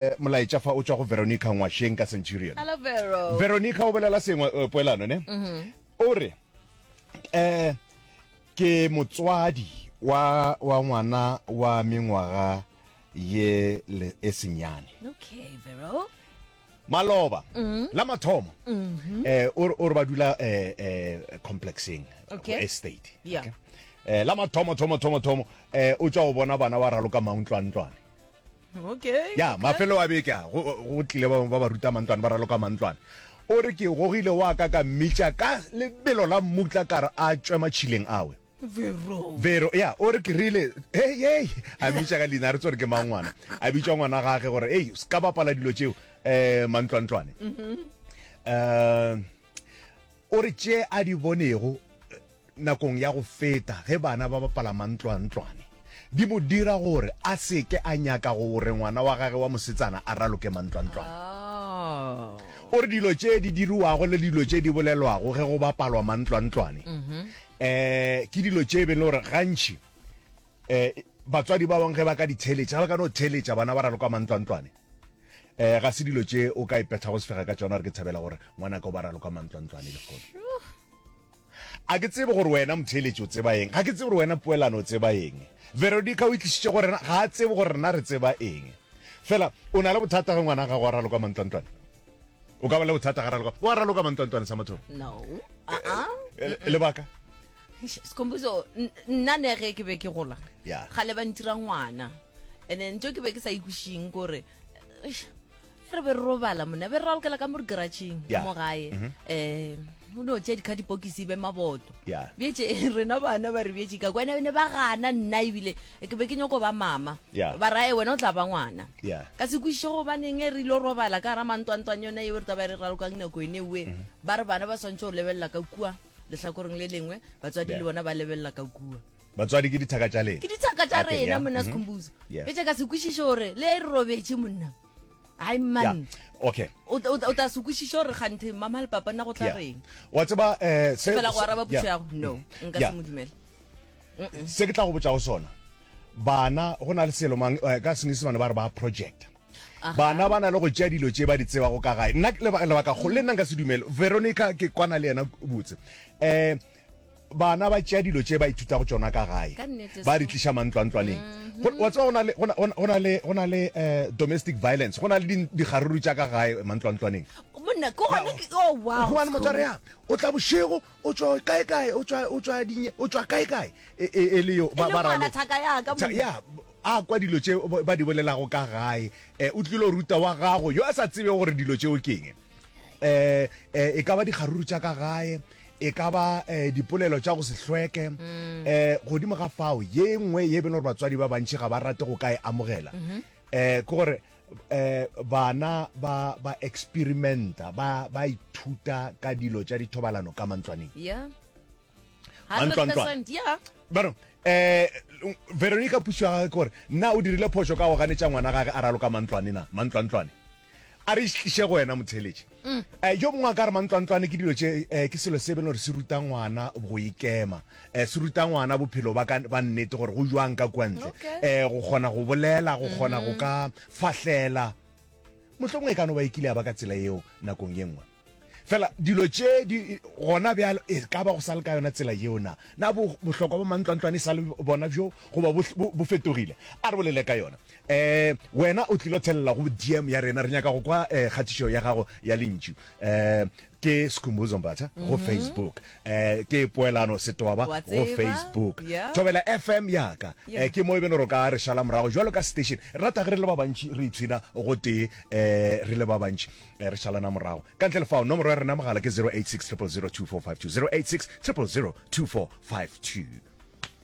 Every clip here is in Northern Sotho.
Molaetša fa o tšwa go Veronica Ngwasheng ka Centurion. Hello, Vero. Veronica o bolela sengwe uh, poelano ne mm -hmm. o re eh ke motswadi wa wa ngwana wa mengwaga ye le e senyane okay vero maloba mm -hmm. la mathomo mm -hmm. eh o re o re ba dula eh eh complexing okay. estate yeah. okay eh la mathomo thomo thomo thomo eh o tswa o bona bana wa raloka mauntlwantlwane okay ya mafelo a beke a go go tlile ba ba ruta mantlwane ba raloka mantlwane o re ke gogile wa ka ka mmitša ka lebelo la mmutla kare a tšwe matšhileng awe vero vero ya o re ke rile hey hey a mmitša ka leina a re tsore ke mang ngwana a bitša ngwana gage gore ei se ka bapala dilo tšeo um mantlwantlwane um O re tše a di bonego nakong ya go feta ge bana ba bapala mantlwantlwane di mo dira gore a se ke a nyaka gore ngwana wa gagwe wa mosetsana a raloke mantlwantlwane. O re dilo tše di diriwago le dilo tše di bolelwago ge go bapalwa mantlwantlwane um ke dilo tše e beng le gore gantši E, batswadi ba bangwe ge ba ka di theeletša ba ka no theeletša bana ba raloka mantlwantlwane um ga se dilo tše o ka e pethago sefega ka tsona re ke thabela gore ngwana ka o ba raloka mantlwantlwane lekgono a ke tsebe gore wena motheeletši o tseba eng ga ke tsebe gore wena poelano o tseba eng veronica o itlišitše gore ga a tsebe gore rena re tseba eng fela o na le bothata ge ngwana ga go a raloka mantlwantlwane o ka ba le bothata ga raloka o a raloka mantlwantlwane sa motho no uh -uh. lebaka sekomposo nna ne ge ke be ke gola yeah. gale ba ntira ngwana and then tso ke be ke sa ikushing kore re be re robala mona be re ralokela ka mo re garageng yeah. mo gae mm -hmm. um o ne o tšea dikga dipokisi be maboto yeah. betse rena bana ba re betse ka kwene ne ba gana nna ebile ke be ke nyoko ba mama yeah. ba rae wena o tla ba ngwana yeah. ka se kwišiše gobaneng e re ile robala ka gara mantwantwang yone eo re taba re ralokang nako ene oe mm -hmm. ba re bana ba swantšhe go lebelela ka kua lehlakoreng le lengwe batswadi le bona ba lebelela ka kua batswadi ke dithaka tša lena ke dithaka tša rena monna sekhombuzo mhm. e tša ka se kwešiše gore le re robetše monna ai man okay o ta se kwešiše gore ganthe mama le papa nna go tla reng wa tseba um fela go araba puso yago no mm. nka se mo dumela se ke tla go botsa go sona bana go na le selomang eh, ka senyesemane ba re ba projecta Bana ba na le go tšea dilo tše ba di tsebago ka gae. Nna lebaka kgolo le nna nka se dumele. Veronica ke kwana le yena botse. Eh bana ba tšea dilo tše ba ithuta go tšona ka gae ba di tliša mantlwantlwaneng mhm. wa tseba go na le eh, domestic violence go na le digaruru tša ka gae mantlwantlwaneng monna ke gona ke oh wow o tla bošego O tšwa kae kae? O tšwa o tšwa dinye? O tšwa kae kae? E, e, e le yo ba ba ralo. Thaka ya ka mo. Ya a kwa dilo tše ba di bolelago ka gae. Eh, o tlilo ruta wa gago yo a sa tsebe gore dilo tšeo keng. Eh, eh, e ka ba dikgaruru tša ka gae e ka ba eh, dipolelo tša go se hlweke mm. eh, godimo ga fao ye nngwe ye e bele gore batswadi ba bantši ga ba rate go ka e amogela um ke gore eh bana ba ba experimenta ba ba ithuta ka dilo tša dithobalano ka mantlwaneng yeah mantlwantlwana yeah bano eh veronica puso ya gage kore nna o dirile phoso ka go ganetša ngwana gage a raloka mantlwane na mantlwantlwane a re išitliše go wena motheletše Eh, yo mongwe a ka re mantlwantlwane ke dilo tše eh, ke selo se be gore se ruta ngwana go ikema eh, se ruta ngwana bophelo ba ka ba nnete gore go jwang ka kwa ntle Okay. eh, go kgona go bolela go kgona go ka fahlela mohlomongwe e ka no ba e kile ya ba ka tsela yeo nakong ye nngwe fela dilo tše di gona bjalo e ka ba go sa le ka yona tsela yeo na na bo- bohlokwa ba mantlwantlwane e sa le bona bjo goba bo- bo bo fetogile a re bolele ka yona um wena o tlilo thelela go dm ya rena re nyaka go kwa um kgatišo ya gago ya lentšu um ke skhumbuzo mbatha go mhm. facebook um ke poelano setoba go facebook thobela fm yaka um ke mo e beno ro ka re šala morago jalo ka station rata ge re le ba bantši re itshwina go tee um re le ba bantši re šalana morago ka ntle lefao nomoro ya rena mogala ke 086 000 2452 086 000 2452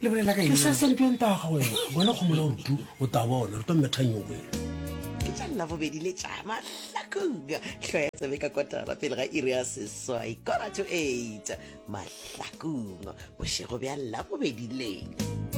le bolela ka ke sa sele bjang taga wena bona go mola rutu o ta bona re tlo methanyong wena ke tša labobedi le tša mahlakong tlho ya tsebe ka kotara pele ga iri ya seswai kora to eight mahlakong bošego bja labobedi leng